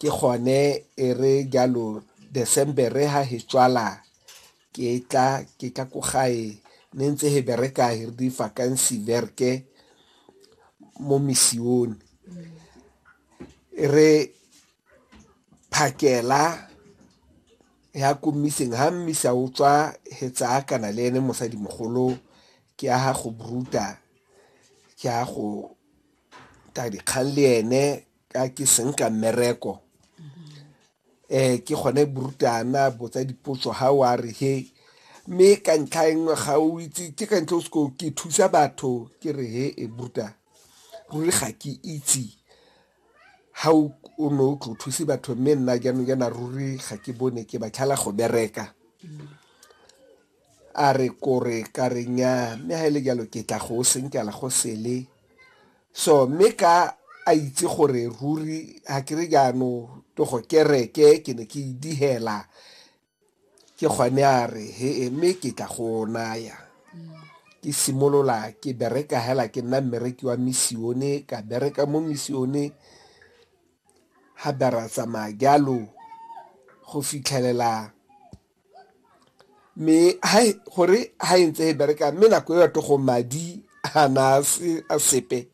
Ke gone e re jalo December-re ha he tswala ke tla ke tla ko gae ne ntse he bereka he re di vacancy verke mo misione e re phakela ya ko mmiseng ha mmisa o tswa he tsaya kana le ene mosadi mogolo ke ya ga go bruta ke ya go ta dikgang le ene ka ke seng ka mmereko um ke gone borutana botsa dipotso ga o a re he mme ka ntlha e nngwe ga o itse ke ka ntlha o seko ke thusa batho ke re he e buruta ruri ga ke itse ga o ne o tlo thuse batho mme nna jaanong jaana ruri ga ke bone ke batlhala go bereka A re kore ka re nnyaa, mme ga e le jalo ke tla go senkela go sele. So mme ka a itse gore ruri ga ke re jaano to go kereke ke ne ke idihela ke gone a re he e mme ke tla go naya ke simolola ke bereka hela ke nna mmereki wa misione ka bereka mo misione ga bera tsamaya jalo go fitlhelela mme gore ha e ntse e bereka mme nako e batho go madi ga na a sepe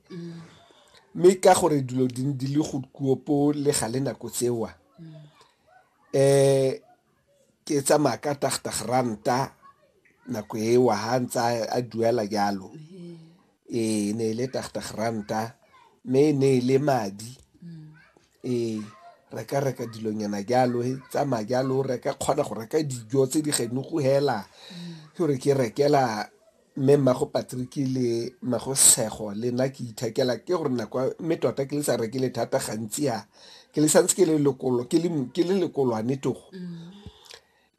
mme ka gore dilo di di le go kuopo le ga le nako tsewa um ke tsamaya ka tagtag ranta nako ewa ha ntse a duela jalo Ee, e ne e le tagtag ranta mme e ne e le madi mm. ee re ka reka dilonyana jalo e tsamaya jalo re ka kgona go reka dijo tse di geno go hela mm. ke gore ke rekela mme mmago patrick le mmago sego le nna ke ithekela ke gore nako mme tota ke le sa rekele thata gantsi a ke le santse ke le lekolwane togo mm.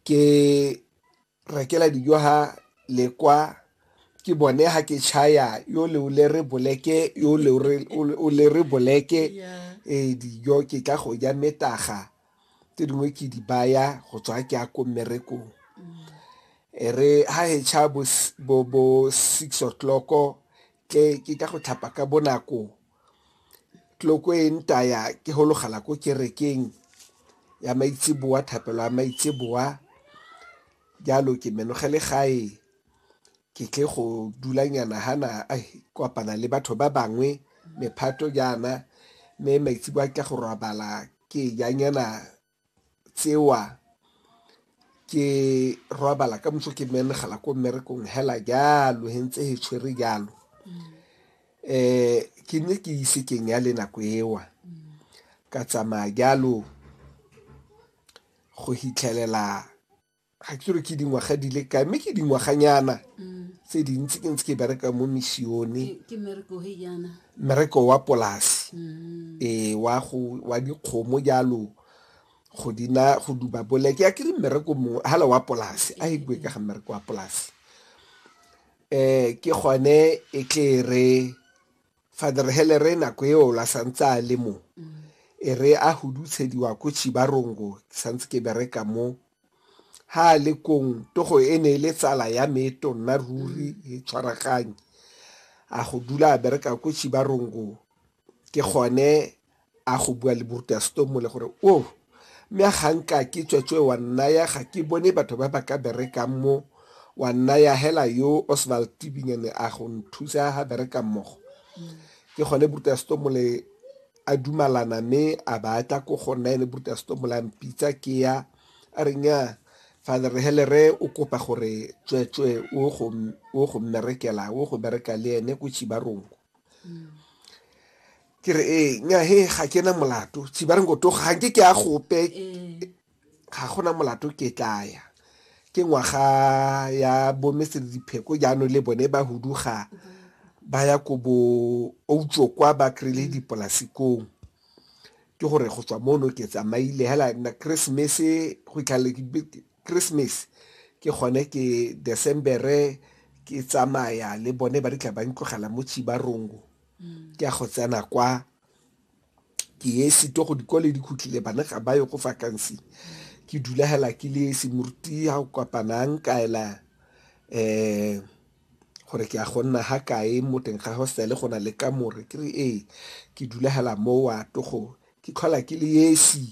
ke rekela dijo ha le kwa ke bone ha ke chaya yo le o le re boleke yo le o le re boleke eh dijo ke tla go ja metaga tse dingwe ke di baya go tswa ke ya ko mmerekong e re ha e cha bo bo six o'clock Ke ke ka go tlhapa ka bonako. Tloko e ntaya ke hologala ko kerekeng ya maitseboa, thapelo ya maitseboa. Jalo ke menogele gae ke tle go dulanyana hana kopana le batho ba bangwe mephato jaana, mme maitseboa ke tla go robala ke janyana. tsewa ke robala ka moso ke menegela ko mmerekong hela jalo he ntse he tshwere jalo um ke ne ke ise ke nya le nako ewa ka tsamaya jalo go hitlhelela ga ke re ke dingwaga di le kae mme ke dingwaganyana mm. tse dintsi ke ntse ke bereka mo misione mmereko wa polasi mm. ee wa dikgomo jalo go dina go duba boleke ya ke re mmereko mongwe hala wa polasi a e bue ka ga mmereko wa polasi um ke gone e tle re Father Helere nako eo la santse a le mo e re a hudutshediwa ko Chibarongo ke santse ke bereka mo ha a le kong togo e ne e le tsala ya me e tonna ruri e tshwaraganye a go dula a bereka ko Chibarongo ke gone a go bua le borutaseto mole gore o mme a ga nka ke tswetswe wa nnaya ga ke bone batho ba ba ka berekang mo wa nnaya hela yo osval tibinyane a go nthusa ga bereka mmogo ke gone borutaseto mole a dumalana mme a batla ko go nna ene borutaseto mole a mpitsa ke ya a re nya father helere o kopa gore tswetswe o go o go mmerekela o go bereka le ene ko chibarongo ke re ee eh, nya he ga ke na molato tshi ba re ngo toga ga ke ke a gope eh. ga gona molato ke tlaya ke ngwaga ya bomese le dipheko jaanong le bone ba huduga ba ya ko bo outso kwa ba kry-ile dipolasikong ke gore go tswa mono ke tsamaile hela na christmas go itlhalele christmas ke gone ke decembere ke tsamaya le bone ba di tla ba ntlogela mo tshibarongo ke ya go tsena kwa ke ye sito go dikole di khutlile bana ga ba yo go vacancy ke dula hela ke le semoruti ha o kopanang ka ela eh gore ke a go nna ha kae mo teng ga hostel go na le ka more ke re ee ke dula hela mo wa togo ke tlhola ke le esi